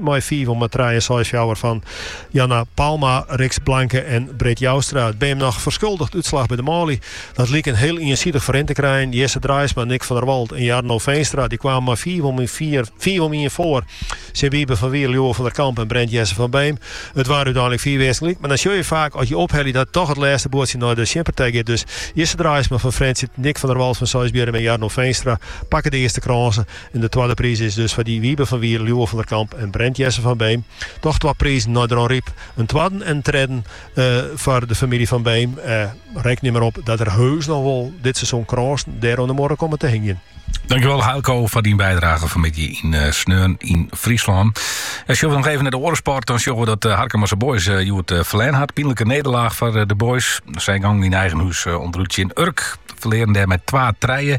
mei fiif om trije en seis fjouwer fan Janna Palma, Rixt Blanke en Britt Joustra. Ik bin noch ferskuldigd útslach by de manlju. Dat liek in hiel iensidich ferrin te krijen. Jesse Draaisma, Nick van der Walt en Jarno Veenstra die kwamen mei fiif om ien foar. Tsjin Wiebe van Wier, Lieuwe van der Kamp en Brent Jesse van Beem. It waard úteinlik fiif earsten gelyk, mar dan sjoch je faak as je ophelje dat toch it lêste buordsje nei de tsjinpartij giet. Dus Jesse Draaisma fan Frjentsjer, Nick van der Walt fan Seisbierrum en Jarno Veenstra pakke de earste krânsen. En de twadde priis is dus foar dy Wiebe van Wier, Lieuwe van der Kamp en Brent Jesse van Beem. Doch twa prizen nei Dronryp. In twadden en in tredden foar de famylje Van Beem. Reken der mar op dat der heus noch wol dit seizoen krânsen dêr oan de muorre komme te hingjen. Dankewol Eelco foar dyn bijdrage fan 'e middei yn eh, Sneon yn Fryslân. En eh, sjogge we noch even nei de oare sport, dan sjogge we dat eh, Harkemase Boys uh, hjoed uh, ferlern hat. Pynlike nederlaach foar de Boys. Sy gongen yn eigen hûs ûnderút tsjin Urk. Ferlearen dêr mei twa trije.